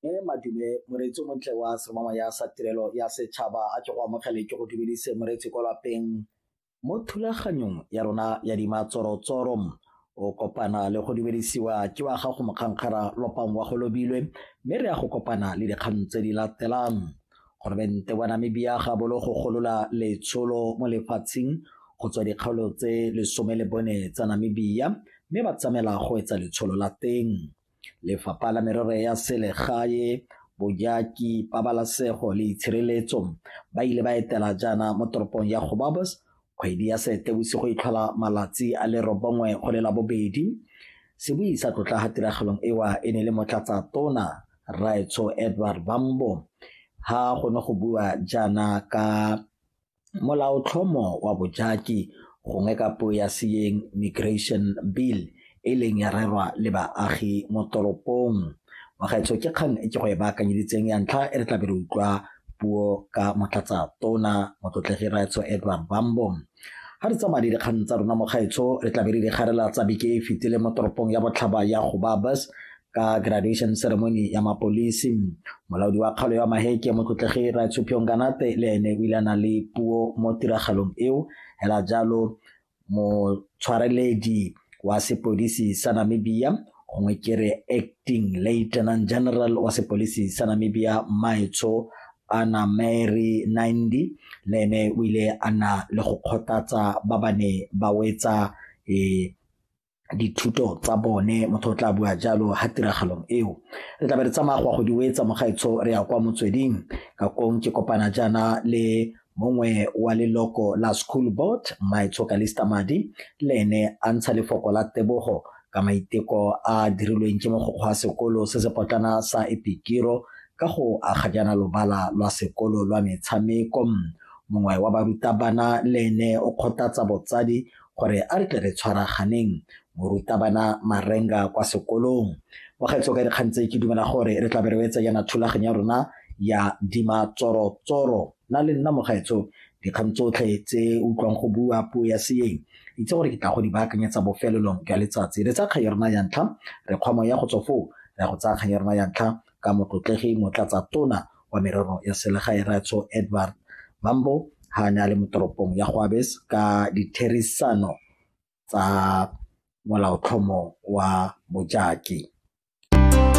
e madume moreetsi o montle wa semama ya sa tirelo ya setšhaba a ke go amogele ke go dumedise moreetsi kwa lapeng mo thulaganyong ya rona ya dimatsorotsoro o kopana le go dumedisiwa ke wa gago mokgankgara lopang wa go lobilwe mme re ya go kopana le dikgang tse di latelang Goromente wa Namibia ga bolo go golola letsholo mo lefatsheng go tswa dikgaolo tse lesome le bone tsa Namibia mme ba tsamela go etsa letsholo la teng. Lefapha la Merero ya Selegae, Bojaki, Pabalasego le Itshireletso ba ile ba etela jaana mo toropong ya Gobabos Kgwedi ya Seetebosigo e tlhola malatsi a le robongwe go le labobedi. Se bui sa tlotla ga tiragalong ewa e ne le motlatsa tona Rraetsho Edward Bambo ha go ne go bua jaana ka molaotlhomo wa bojaki gongwe ka puo ya Seyeng Migration Bill e ileng ya rerwa le baagi mo toropong. Bagaetsho ke kgang e ke go e baakanyeditseng ya ntlha e re tlabe re utlwa puo ka motlatsa tona motlotlegi raetsho Edward Bambo ga re tsamaya le dikgang tsa rona mo gaetsho re tlabe re di garela tsa beke e fetile mo toropong ya botlhaba ya go babas ka graduation ceremony ya mapolisi molaodi wa kgaolo ya maheke motlotlegi raetsho piongkanate le ene o ile a na le puo mo tiragalong eo hela jalo motshwareledi wa sepodisi sa namibia gongwe ke re acting lieutenant general wa sepodisi sa namibia maetsho ana mary nindi le ene o ile a na le go kgothatsa ba ba ne ba wetsa um dithuto tsa bone motho o tla bua jalo ha tiragalong eo re tla be re tsamaya go ya go di wetsa mogaetsho re ya kwa motsweding ka kong ke kopana jaana le mongwe wa leloko la school board mmaetsho kalista madi le ene a ntsha lefoko la tebogo ka maiteko a dirilweng ke mogokgwa wa sekolo se se potlana sa epikiro ka go aga jaana lobala lwa sekolo lwa metshameko mongwe wa barutabana le ene o kgothatsa botsadi gore a re tle re tshwaraganeng morutabana marenga kwa sekolong mogaetso ka dikgang tse ke dumela gore re tla be re etsa yana thulaganyo ya rona ya dima tsorotsoro na le nna mogaetso dikgang tsotlhe tse utlwang go bua puo ya seeng itse gore ke tla go di baakanyetsa bofelelong jwa letsatsi re tsa kgang ya rona ya ntlha re kgwamo ya go tswa foo re ya go tsaya kgang ya rona ya ntlha ka motlotlegi motlatsa tona wa merero ya selegae Ratso Edward Mambo ha ne a le mo toropong ya Goabes ka ditherisano tsa molaotlhomo wa bojaki.